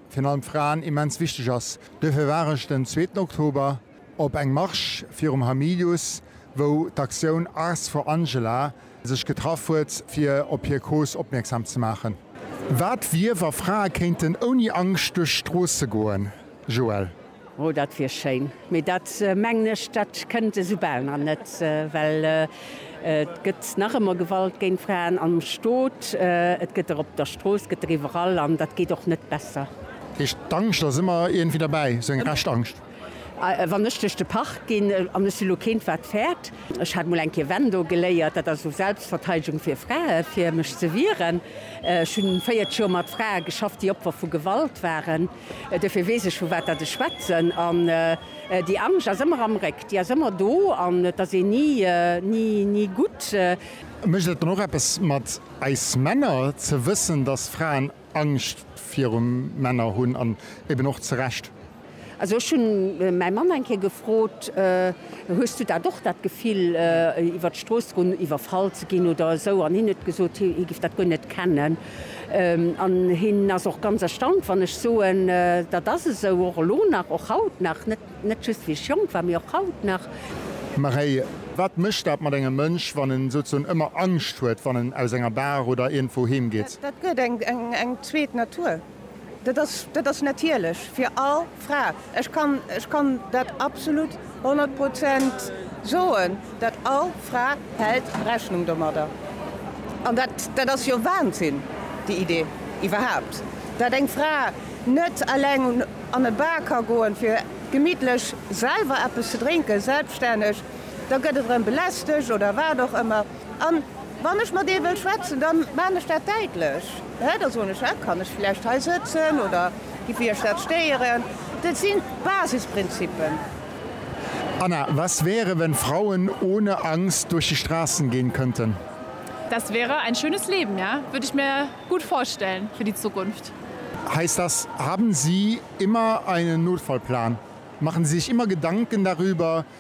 virun allem Fraen immens wichteg ass. Duerfir war ech den zweeten Oktober op eng Marche virum Hamilius, wou d'Aktioun Ars for Angela sech getraff huet, fir op hir Cause opmierksam ze maachen. Wat wier, wa Frae kéinten ouni Angscht duerch d'Stroosse goen? Joël. Oh, dat wier schéin, mee dat mengen ech, dat kënnt esou bal nach net, well et gëtt nach ëmmer Gewalt géint Fraen am Stot, et gëtt der op der Strooss, et gëtt der iwwerall an dat geet och net besser. Heescht, d'Angscht ass ëmmer iergendwéi derbäi, sou eng Rescht-Angscht? Wann ech duerch de Park ginn, an ech si lo keent wat fäert, ech hat mol eng Kéier Wendo geléiert, dat ass esou Selbstverteidegung fir Frae fir mech ze wieren, ech hunn 40 Joer mat Frae geschafft, déi Opfer vu Gewalt waren. Duerfir weess ech, vu wat datt ech schwätzen. An déi Angscht ass ëmmer am Réck, déi ass ëmmer do an et ass een ni, ni gutt. Mécht et dann och eppes mat eis Männer, ze wëssen, datt Fraen Angscht viru Männer hunn an eben och zu Recht? Also ech hunn mäi Mann eng Kéier gefrot, Hues du dat och, dat Gefill, iwwer d'Strooss ze goen, iwwerfall ze ginn oder esou? An hien huet gesot, hie giff dat guer net kennen. An hien ass och ganz erstaunt, wann ech soen, dat ass esou, och elo nach, och haut nach, net just wéi ech jonk war, mee och haut nach. Maréi, Wat mécht dat mat engem Mënsch, wann en souzesoen ëmmer Angscht huet, wann en aus enger Bar oder iergendwou heem geet? Dat gëtt eng zweet Natur. Dat ass, dat ass natierlech fir all Fra. Ech kann, ech kann dat absolut honnert Prozent soen, dat all Fra hält Rechnung domadder. An dat, dat ass jo Wahnsinn, déi Idee iwwerhaupt, dat eng Fra net eleng un, an e Bar ka goen, fir gemittlech selwer eppes ze drénken, selbststänneg. Da gëtt et erëm belästegt oder wat och ëmmer. A wann ech mat ee wëll schwätzen, da maan ech dat däitlech. Hä? Da soen ech, Hä? Kann ech vläicht hei sëtzen oder giff Iech dat stéieren? Dat sinn d'Basisprinzippen. Anna, Was wäre, wenn Frauen ohne Angst durch die Straßen gehen könnten? Das wäre ein schönes Leben, ja. Würde ich mir gut vorstellen für die Zukunft. Heißt das, haben Sie immer einen Notfallplan? Machen Sie sich immer Gedanken darüber,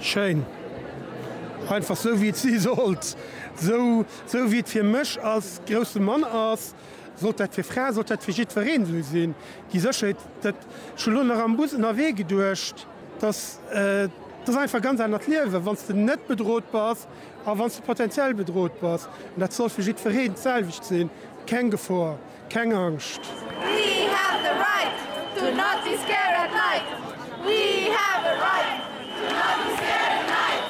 Schéin. Einfach sou wéi et si sollt. Sou sou wéi et fir mech als grousse Mann ass, sollt dat fir Frae, sollt dat fir jiddwereen sou sinn. Déi Sécherheet, dat, ech hunn elo nach am Bus ënnerwee geduecht, dass, dat ass einfach e ganz anert Liewen, wann s de net bedrot bass a wann s de potentiell bedrot bass. Dat soll fir jiddwereen d'selwecht sinn, keng Gefor. Keng Angscht! We have the right to not be scared at night We have a right to not be scared at night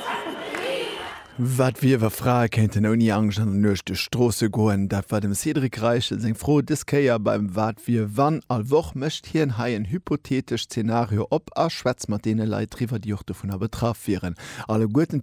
We have. Wat wier, wa Frae kéinten ouni Angscht an der Nuecht duerch d'Stroosse goen? Dat war dem Cédric Reichel seng Fro dës Kéier beim Wat wier wann. All Woch mécht hien hei en hypothetesch Zenario op a schwätzt mat deene Leit driwwer, déi och dovunner betraff wieren. Alleguerten